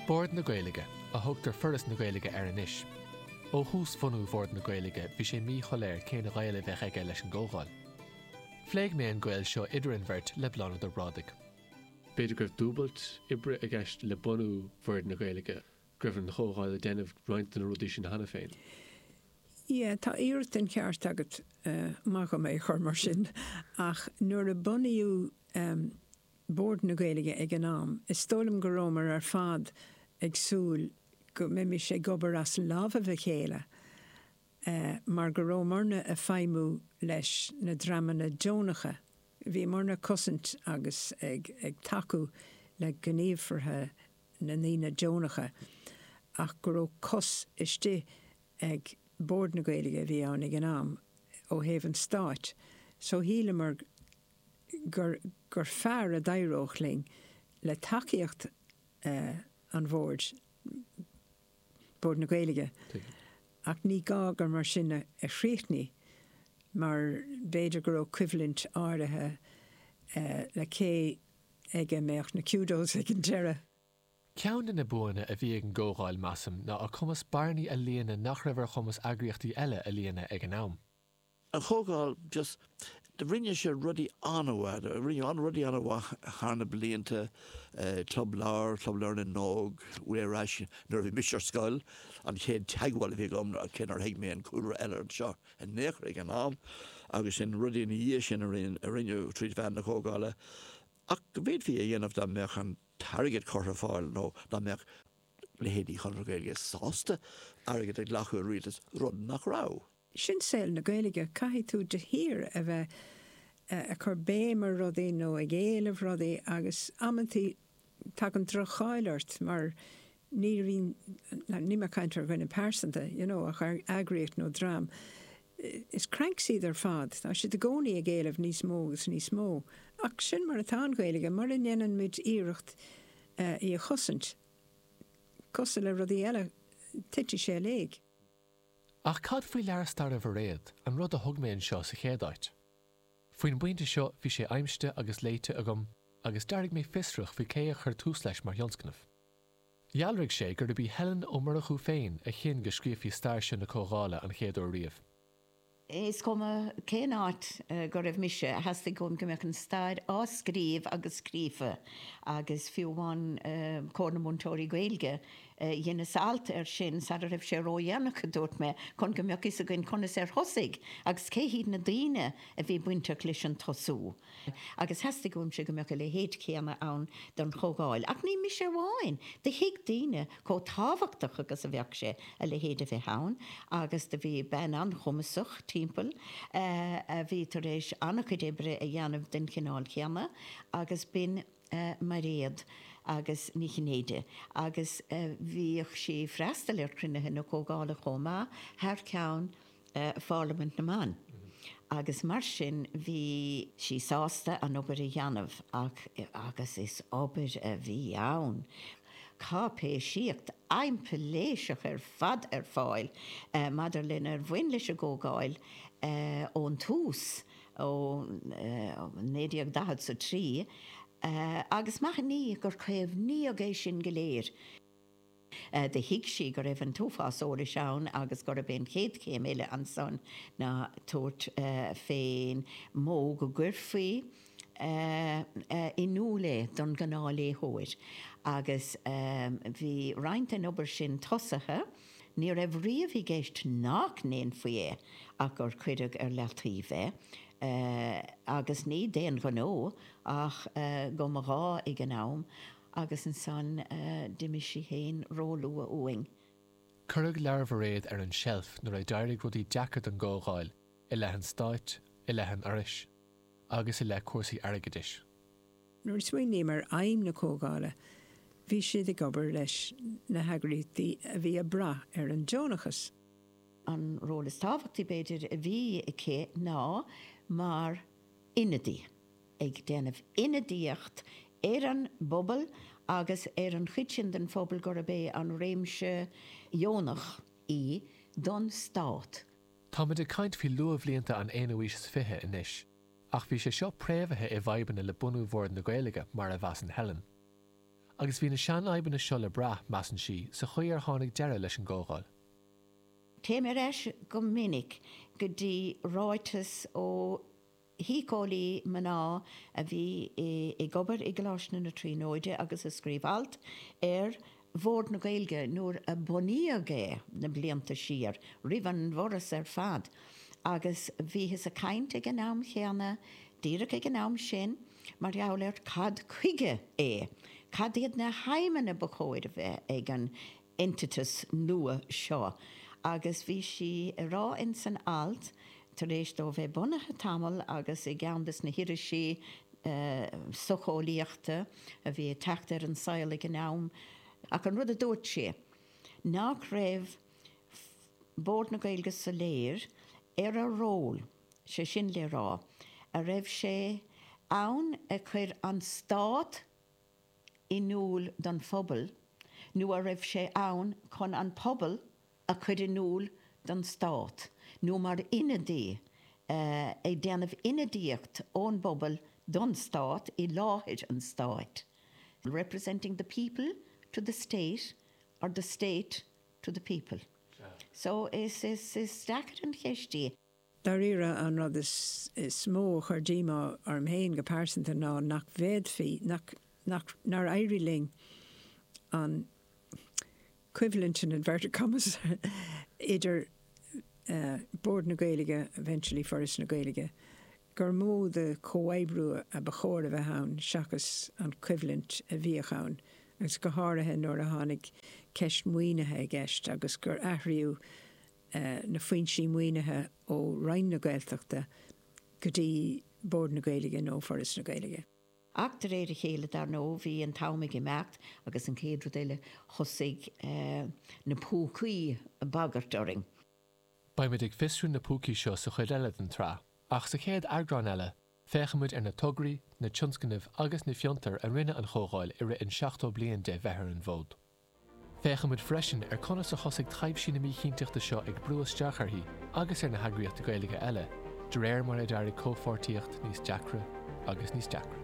Bord na Gaeilge, a thugtar Foras na Gaeilge air anois. Ó thús bhunú Bhord na Gaeilge bhí sé míshoiléir cén gaol a bheadh aige leis an gComhdháil. Phléigh mé an gaol seo idir an mbeirt le Bláthnaid Ó Brádaigh. B'fhéidir go raibh dúbailt oibre i gceist le bunú Bhord na Gaeilge, go raibh an Chomhdháil ag déanamh roinnt de na rudaí sin cheana féin. Yeah, tá iarracht den cheart agat, más maith leat é a chur mar sin, ach nuair a bunaíodh Bord na Gaeilge ag an am. Is dóigh liom go rabhamar ar fad ag súil go mbeimis ag obair as lámhaibh a chéile mar go rabhamarna ag feidhmiú leis na dreamanna deonacha, bhíomarna ag cosaint agus ag tacú le gníomhartha na ndaoine deonacha, ach go raibh cos istigh ag Bord na Gaeilge a bhí ann ag an am ó thaobh an Stáit. So shíleamar. gur gur fearr a d'éireodh linn, le tacaíocht an Bhoird, Bord na Gaeilge, ach ní gá gur mar sin a chríochnaigh mar b'fhéidir go raibh coimhlint áirithe le cé aige a bheadh na kudos ag an deireadh. Ceann de na buanna a bhí ag an gComhdháil, measaim, ná a cumas bearnaí a líonadh nach raibh ar chumas eagraíochtaí eile a líonadh ag an am. An Chomhdháil, just, rinne sé rudaí an-mhaith, rinneadh an-rudaí an-mhaith thar na blianta, Club Leabhar, Club Leabhar na nÓg, ar ais nuair a bhí mise ar scoil, an chéad teagmháil a bhí agam, cé nár thuig mé an cúlra uilig seo in aon chor ag an am, agus sin rudaí ina dhiaidh sin a rinneadh trí mheán na Comhdhála ach go bhféadfaí a dhéanamh dá mbeadh an t-airgead curtha ar fáil nó dá mbeadh leithéidí Chonradh na Gaeilge sásta airgead a ghlacadh ó rialtas, rud nach raibh. Sin saol na Gaeilge, caithfidh tú de shíor a bheith ag cur béim ar rudaí nó ag éileamh rudaí agus amantaí tagann droch-cháil ort mar ní bhíonn, níl mé ag caint ar dhuine pearsanta, you know ach ar eagraíocht nó dream. Is cranks iad ar fad, tá siad i gcónaí ag éileamh níos mó agus níos mó. Ach sin mar atá an Ghaeilge, mura ndéanann muid iarracht í a chosaint, cosúil le rudaí eile, titfidh sé i léig. Ach cad faoi leabhar staire Bhairéad, an rud a thug mé anseo sa chéad áit? Faoin bpointe seo bhí sé aimsite agus léite agam agus d'éirigh mé fiosrach faoi cé a chuir tús leis mar thionscnamh. Dhealraigh sé gurb í Helen Ó Murchú féin a chinn go scríofaí stair seo na Comhdhála an chéad uair riamh. Is cuma cén áit go raibh mise, theastaigh uaim go mbeadh an stair á scríobh agus scríofa agus fiú amháin Comhar na Múinteoirí Gaeilge, dheineas alt air sin sara raibh sé ródhéanach, a dúirt mé, chun go mbeadh fhios againn conas ar thosaigh agus cé hiad na daoine a bhí bainteach leis an tosú. agus theastaigh uaimse go mbeadh a leithéid céanna ann don Chomhdháil. Ach ní mise amháin, do thuig daoine chomh tábhachtach agus a bheadh sé a leithéid a bheith ann, agus do bhí bean an-chumasach timpeall a bhí tar éis ana-chuid oibre a dhéanamh den chineál céanna, agus b'in Mairéad agus Ní Chinnéide, agus bhíodh sí ag freastal ar chruinnithe na Comhdhála chomh maith, thar ceann. Pharlaimint na mBan, agus mar sin bhí sí sásta an obair a dhéanamh, ach agus is obair a bhí ann! cáipéisíocht aimpléiseach ar fad ar fáil maidir lenar bhain leis an gComhdháil ón tús, ó 1940 is a trí, agus maith ann í gur caomhnaíodh é sin go léir. Do thuig sí go raibh an t-uafás eolais ann agus gurb é an chéad chéim eile ansan ná tabhairt fén mó go gcuirfí in iúl é don ghnáthléitheoir. Agus bhí roinnt den obair sin tosaithe, ní raibh riamh i gceist nach ndéanfaí é ach gur cuireadh ar leataobh é, agus ní d'aon ghnó ach go mba ghá ag an am, agus ansan d'imigh sí fhéin róluath uainn. Cuireadh leabhar Mhairéad ar an tseilf nuair a d'éirigh rudaí deacair don gComhdháil, i leith an Stáit, i leith an Fhorais, agus i leith cúrsaí airgeadais. Nuair a smaoiním ar fheidhm na Comhdhála, bhí siad ag obair leis na heagraíochtaí a bhí ag brath ar an deonachas. An ról is tábhachtaí, b'fhéidir, a bhí aici ná mar ionadaí. ag déanamh ionadaíocht ar an bpobal agus ar an chuid sin den phobal gurb é an réimse dheonach í don stát. Táimid ag caint faoi luathbhlianta an aonú aois is fiche anois, ach bhí sé seo préamhaithe i bhfadhbanna le bunú Bhord na Gaeilge, mar a mheasann Helen. Agus bhí na seanfhadhbanna seo le brath, measann sí, sa chaoi ar tháinig deireadh leis an gComhdháil. Téim ar ais go minic go dtí ráiteas ó. shíceolaí mná a bhí ag obair i gColáiste na Tríonóide agus a scríobh alt ar Bhord na Gaeilge nuair a bunaíodh é na blianta siar roimh an bhForas ar fad agus bhíothas ag caint ag an am chéanna, díreach ag an am sin, mar gheall ar cad chuige é, cad iad na haidhmeanna ba chóir a bheith ag an. eintiteas nua seo agus bhí sí ag rá ins an alt, tar éis dó bheith bunaithe tamall agus i gceann de na hirisí socheolaíochta a bhí ag teacht ar an saol ag an am, ach an rud a dúirt sí, nach raibh Bord na Gaeilge soiléir ar a ról, sé sin le rá, an raibh sé ann a chur an Stát, in iúl don phobal nó an raibh sé ann chun an pobal a chur in iúl don stát nó mar ionadaí ag déanamh ionadaíocht ón bpobal don stát i láthair an stáit representing the people to the state or the state to the people. So, is deacair an cheist í. Dáiríre, an rud is mó a chuir díomá orm féin go pearsanta ná nach bhféadfaí, nach, nár éirigh linn an coimhlint, in inverted commas, idir Bord na Gaeilge, eventually Foras na Gaeilge, gur mó de chomhoibriú ba chóir a bheith ann seachas an choimhlint a bhíodh ann agus go háirithe nuair a tháinig ceist maoinithe i gceist agus gur athraíodh na foinsí maoinithe ó Roinn na Gaeltachta go dtí Bord na Gaeilge nó Foras na Gaeilge. Ach de réir a chéile, dar ndóigh, bhí an t-am ag imeacht agus an chéad rud eile thosaigh na púcaí ag bagairt orainn. Beidh muid ag fiosrú na púcaí seo sa chuid eile den tsraith, ach sa chéad eagrán eile féachfaidh muid ar na tograí, na tionscnaimh agus na fiontair a rinne an Chomhdháil i rith an 70 bliain de bheith ar an bhfód. Féachfaidh muid freisin ar conas a thosaigh taibhsí na míchinnteachta seo ag brú isteach uirthi agus ar na heagraíochtaí Gaeilge eile de réir mar a d'éirigh comhpháirtíocht níos deacra agus níos deacra.